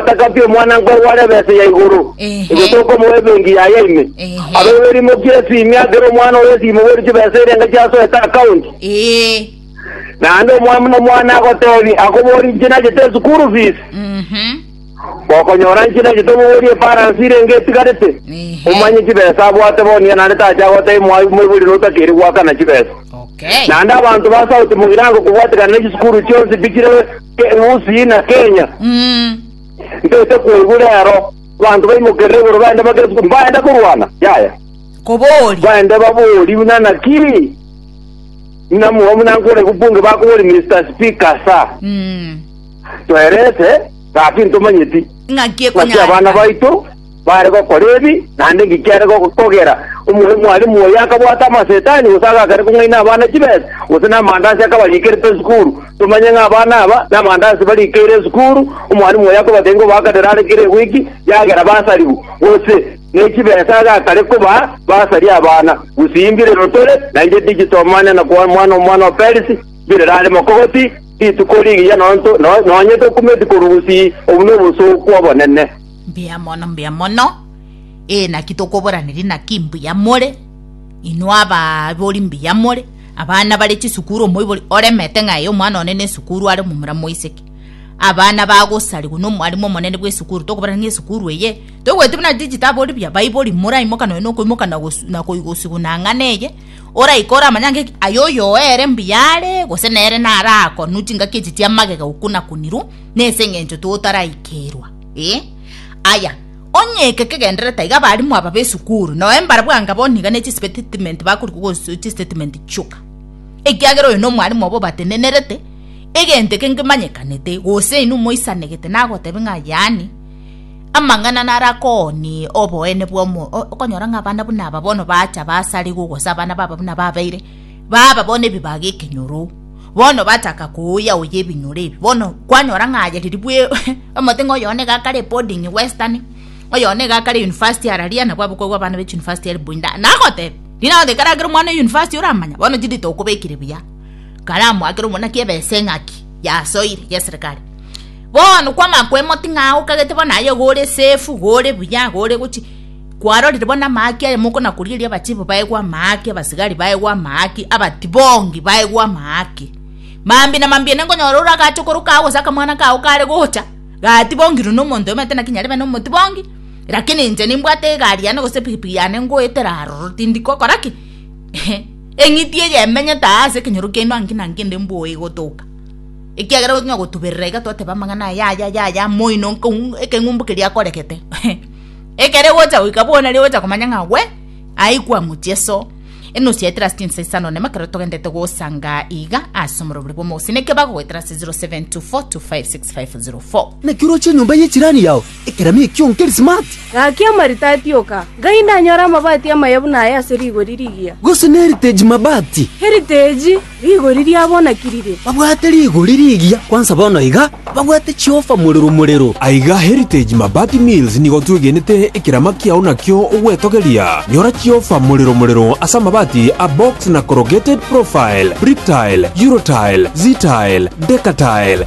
Atakabie omwananko oye bware ebesa ya igoro, Ehe. erio tokomoa ebenki yaye ime. Ehe. Abe bwerimo kia esimi akere omwana oye esimo bweri chibesa erenge chiasoete akaunti. Ee. Naende omwami nomwana agotebi akobori inche nachete esukuru fees. Mhm. Gokonyora inche nachete omobori efaransi irenge etigarete. Ehe. Omanye chibesa abwate bono iga naende tacha agotebi mwa- moibori notakeri goakana chibesa. Okay. Naende abanto ba sauti mogirango kobwatekana nechisukuru chionsi bichire Gusii na Kenya. Mm. Ntete koigwa rero banto baimokerere igoro baende bagesu baende korwana. Yaya. Kobori. Baende babori buna naki. Buna mwa buna nkore kubunge bakobori Mr. Speaker sa. Mm. Twerete ngaki ntomanyeti. Ngaki Ngaki abana ekonyareka. baito Baare gokora ebi, naende inki kiare gokogera? Omorwoti mwalimu oye akabwata amasetani, gose agakana kong'aina abana chibesa, gose namandaasi akabarikireta esukuru? Tomanye ng'a abana aba namandaasi barikeire esukuru, omwalimu oye akobatebia ng'a obakadere are kera ewiki yagera basaribu, gose ne chibesa agakare kobaa basaria abana. Gusii mbirero tore, nainche tichiti omanya na koa omwana omwana o Perisi, mbirero are mokogoti, rituko rigiya nonto, no- nonye tokumeti korwa gusii, obwo nobosooku obonene. Mbuya mono, mbuya mono. Ee, naki tokoboraneria naki mbuya more, inwe abaibori mbuya more, abana bare chisukuru omoibori oremete ng'a ee omwana one nesukuru are omomura moiseke. Abana bagosarigwa nomwarimu omonene bw'esukuru tokobarera ng'a esukuru eye toigweti buna chitabu ori buya, baibori moraimoka nonya nokoimoka na gosu na koi gosiguna ang'e neye, oraika oramanye ang'e ki aye oyo oere mbuya are gose nere narakonwa chingaki echi chiamagega okuna-kunirwa nese eng'encho totaraikeirwa. Ee, aya, onye eke kegenderere taiga abalimu aba b'esukuru, noe mbarabwanga bono iga ne chisbetitimenti bakorikwa gosu chisbetitimenti chioka, ekiagera oyo nomwalimu obo obatenenerete egento eke ngemanyekanete, gose inwe moisanegete nagotebia ng'a yaani, amang'ana naro akoonie oboene bw'omo o, okonyora ng'a abana buna aba bono baacha basarigwa gose abana baba buna babeire baba bono ebibaga ekenyoro. bono bataka kooya oye ebinyoro ebi bono kwanyora ng'a aye riria bwe omote ng'a oyo one iga akare boarding western oyo one iga akare university araria nabo abakobua abana be chuniversity are buinda nagoteba riria nagoteba ekero akere omwana o university oramanya bono chiri tokobekire buya karamu akere omwana ki ebesa eng'aki yasoire ya eserekari bono kwamanya koemoting' aa okagete bono aye iga ore safe iga ore buya iga ore gochi. Kwarorire bono amaaki aye moko na korigereria abachebo baegwe amaaki, abasigari baegwe amaaki, abatibongi baegwe amaaki. Mambia na mambia ene nkonyora ore agacha okoroka agwo gose akamwana kao kare gocha gatibongirwe nomonto omanyete naki nyarebe nomotibongi lakini inche nimbwate egari yane gose epigipigi yane ngoetera aroro tindi gokora ki ehe eng'iti eye emenyete aa ase ekenyoro kiaino anki na anki ende mbwogo egotoka ekiagera onya gotuberera iga twateba amang'ana aya aya aya aya moino ekeng'umbu keria akoregete ehe. Ekere gocha goika bono aria gocha komanya ng'a gwe aikwa mutieso. Enusu ya eterasi chinsa isano nemo ekero togendete gosanga iga ase omorobori bw'omogusii neke bagogoetera ase 0724256504. Naki oroche enyomba ye chirani yao ekerami ekio nkeri smart? Gaki amaritati oka, ngai ndanyore amabati amaye buna aya ase rigori rigiya. Gose n'heritage mabati? Heritage. Rigori ria bona ki rire? Babwate rigori rigiya kwansa bono iga, babwate chiofa morero morero. Aiga Heritage Mabati Mills nigo twegenete ekerama kiao nakio ogwetogeria. Nyora chiofa morero morero ase amabati a box na corrugated profile, Bricktile, Eurotile, Ztile, Decatile,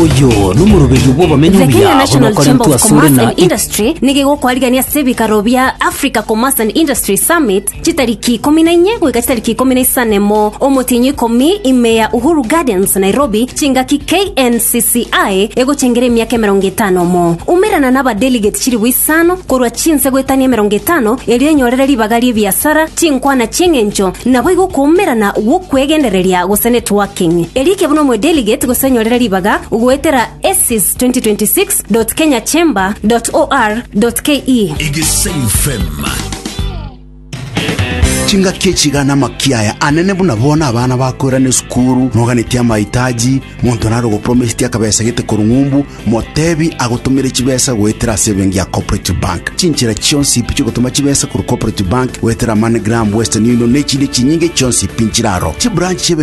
Oyo nomoroberio bw'abamenyi The Kenya obuya National Chamber onokoretwe of asore Commerce na and Industry nigo kwarigania ase ebikaro bia Africa Commerce and Industry Summit chitariki ikomi na inye goika chitariki ikomi na isano emo omotienyi ikomi ime ya Uhuru Gardens Nairobi chingaki KNCCI egochengera emiaka emerongo etano mo umerana n'abadelegate chilifu isano korwa chinse goetania emerongo etano erio enyorere ribaga ri'ebiasara Chinkwana chi'eng'encho naboigo okoumerana gw'okwegendereria gose networking. Erie kebuna omodeligate gose nyorera ribaga goetera assis2026.kenyachamber.or.ke. Egesaim FM. Chingaki echi iga namakia aya anene buna bono abana bakoirana esukuru noganetie amaitaji monto nare ogopromesiti akabesa gete korwa ng'umbu Motebi agotomere chibesa goetera ase ebenki ya Cooperative Bank. Chinchera chionsi pi chigotoma chibesa korwa Cooperative Bank goetera MoneyGram, Western Union na echinde chinyinge chionsi pi nchire aro. Chibranch chi'ebenki